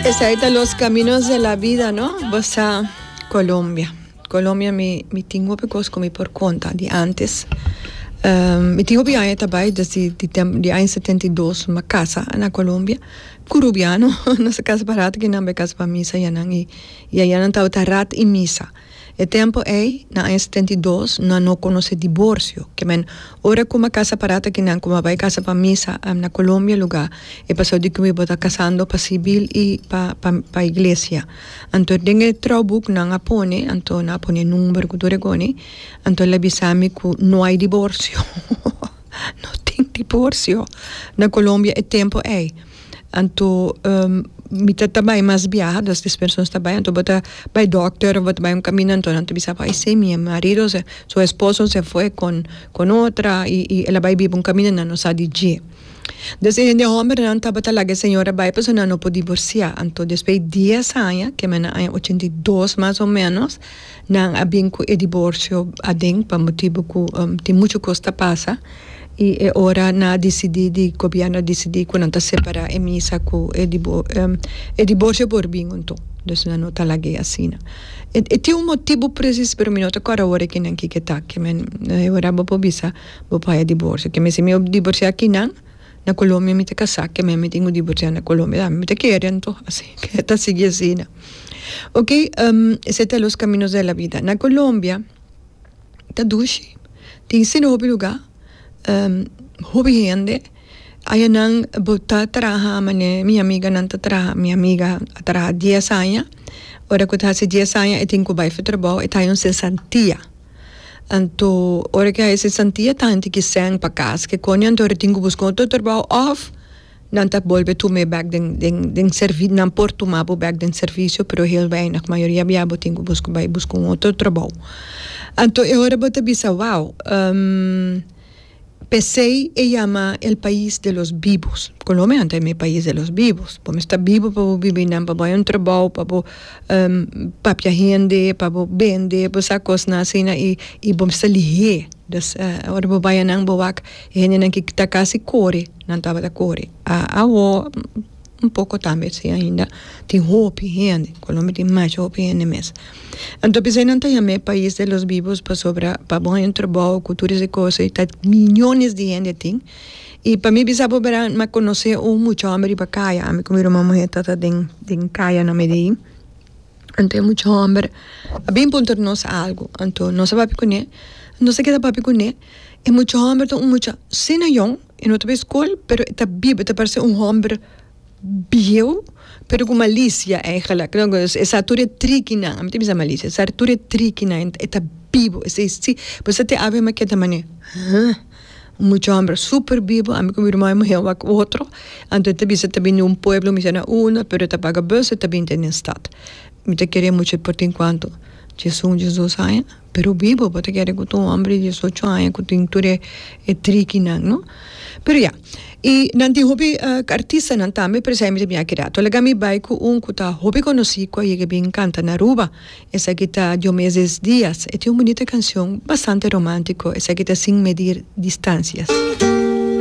Esai ta Los Caminos de la Vida, no? Basa Colombia. Colombia mi, mi tin hopi cos cu mi por conta di antes. Um, mi tin hopi aña ta bai, desde di, tem, di aña setenta i dos mi a casa na Colombia. Curubiano, nos a casa pa rat, kinan bai a casa pa misa, yanan, y, y ayanan tabata rat y misa. E tempo ey, na aña setenta i dos, nan no conoce divorcio. Ke men, ora cuma casa para ta kinan cuma bay casa pa misa na Colombia lugar, e paseo di kibo ta casando pa civil y pa pa pa iglesia. Anto den e trouboek nan a pone, anto nan a pone e number cu tur e coni, anto el a bisa mi cu no hay divorcio, no tin divorcio na Colombia e tempo ey. Anto mi ta ta bai mas biaha dos tres personas ta bai anto bo ta bai doctor of bo ta bai un caminda anto nan ta bisa bo aysé mi marido se su esposo se fue con con otra y y el a bai biba un caminda nan no sa di dje des e hende hombernan tabata laga e señora bai pasobra nan no por divorcia anto despues dies aña ke mi a na aña ochenta y dos mas o menos Nan a bin cu e diborcio aden pa motibu cu tin muchu cos ta pasa y e ora nan a dicidi di gobierno a dicidi cu nan ta separa e misa cu e e diborcio por bin hunto dus nan no ta lag'e asina. E tin un motibu presis pero mi no ta cord awor kinan kico ta kimen e ora bo por bisa bo por haya diborcio kimen si mi diborcia kinan. Na Colombia mi ta casá keme mi tin cu divorciá na Colombia dame mi ta kere anto así keme ta sigui asina ok esey ta los caminos de la vida na Colombia ta dushi tin sende hopi lugar hopi hende ayanan bo ta traha mane mi amiganan ta traha mi amiga a traha dies aña ora cu ta hasi dies aña e tin cu bay for trabao e ta haya un cesantia. Anto ora ke hay sesantia ta henter ki sèn pa kas ke koni anto ora tin ku buska otro trabou of nan ta bolbe tuma e bèk den den den servi nan por tuma bo bèk den servisio pero hel weinig mayoria bia bo tin ku buska bai buska un otro trabou anto e ora bo ta bisa wou. P'esei e yama el pais de los bibos. Colombia no ta e mes pais de los bibos. Bo mester bibo pa bo bibi nan, pa bo hay un trabao, pa bo papia hende, pa bo bende, bo sa cosnan asina y y bo mester lihe. Dus ora bo bay anan bo wak e hendenan ki ta casi core nan tabata core. Awo un poco tambe si ainda tin hopi hende Colombia tin mashi hopi hende mes anto p'esei nan ta yam'e pais de los vivos pasobra pa bo hay un trabou cu tur ese cosa y ta millones di hende tin y pa mi bisa bo bera m'ha conoce un mucha homber riba caya ami cu mi ruma muher tata den den caya na Medein anto e mucha homber a bin puntra nos algo anto nos a papia cune nos a keda papia cune e mucha homber ta un mucha sin ayuno E no ta bay school pero e ta biba e ta parse un homber bieuw pero cu malicia eindelijk e sa tur e trikinan ami ta bisa malicia e sa tur e trikinan e ta bibo e say si bo sa te ave maket ta mane ha un mucha homber super bibo ami cu mi ruma mi muher wak otro anto e ta bisa ta bini un pueblo mi siana una pero e ta paga bus e ta binti den stad mi ta kere mucho por tin cuanto chizun jesus aya. Pero bibo pa ta kere cu ta un hombre di diesocho aña cu tin tur e trikinan no. Pero ya. Y nan tin hopi artistanan tambe pero esaki mi ta bin aki rato. Laga mi bay cu un cu ta hopi conoci cu a yega bin canta na Aruba. Esaki ta Diomedes Diaz. E tin un bunita cancion bastante romantico. Esaki ta Sin medir distancias.